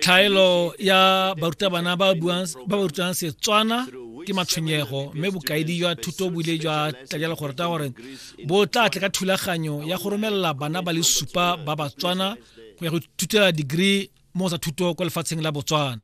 thaelo ya barutabana ba ba rutang setswana ke matshwenyego mme bokaedi jwa thuto bo ile jwa tlalela gore ta gore bo tla tle ka thulaganyo ya go romelela bana ba le supa ba batswana go ya go thutela degree mo sa thuto kwa lefatsheng la botswana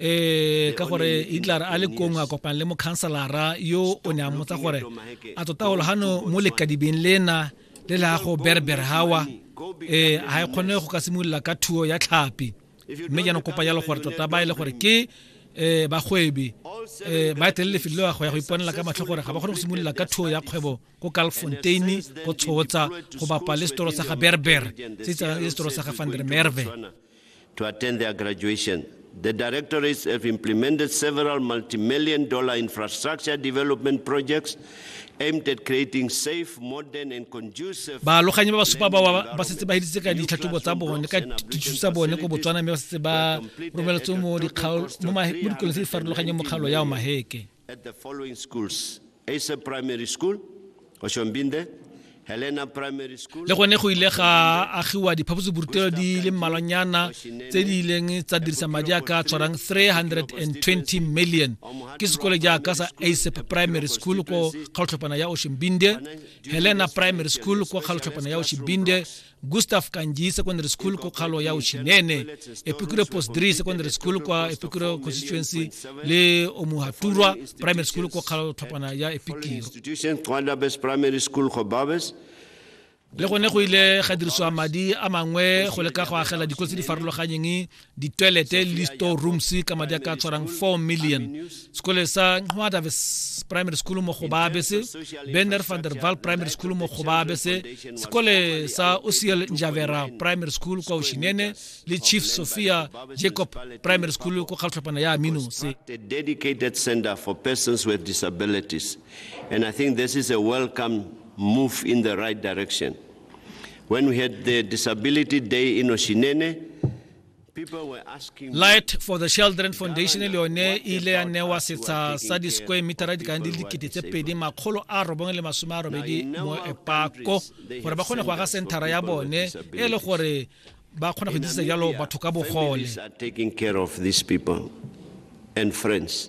ee ka gore hitler a le kong a kopang le mokhanselara yo o ne a motsa gore a tota gologano mo lekadibeng lena le la go berber hawa ee ga e kgone go ka simolola ka thuo ya tlhapi mme jaanong kopa jalo gore tota ba e le gore ke um bagwebi um ba etelele lefelo leo go ya go iponela ka matlho gore ga ba kgone go simolola ka thuo ya kgwebo ko calfontein go tshotsa go bapa le setoro sa ga berber se itsa le setoro sa ga vandermerve to attend their graduation. The directorates have implemented several multi-million dollar infrastructure development projects aimed at creating safe, modern and conducive... Baaloganyi ba ba supa ba ba setse ba heditse ka ditlhatlhobo tsa bone ka dithuso tsa bone ko Botswana mme ba setse ba romeletswe mo dikolong tse di farologanyeng mo kgaolo ya Omaheke. At the following schools, Asa Primary School, Oshombinde, Helena Primary School. Le gone go ile ga agiwa diphaposiborutelo di le mmalwanyana tse di ileng tsa dirisa madi a ka tshwarang 320 million ke sekole jaaka sa asap primary school ko kgaotlhopana ya oshimbinde helena primary school ko kgaotlhopana ya oshimbinde gustav kanji secondary school ko kgalo ya uchinene epikure post 3 secondary school kwa epikure constituency le omuhaturwa primary school ko kgalo tlhopana ya epikiro le gone go ile ga dirisiwa madi a mangwe go leka go agela dikolo tse di farologanyeng ditwelete le di-store rooms ka madi a ka tshwarang 4 million sekole sa nqwadaves primary school mo gobabe se benner van der val primary school mo gobabe se sekole sa osiel njavera primary school kwa oshinene le chief sophia jacob primary school ko kgatlhophana ya amino se dedicated center for persons with disabilities and i think this is a welcome move in the right direction When we had the Disability Day in Oshinene, light for the children foundation le yone e ile ya newa setsha sa di-square metera di kang di le dikete tse pedi makgolo a robong le masome a robedi mo epako gore ba kgone go aga centera ya bone e le gore ba kgona go dirisa jalo batho ka bogole and friends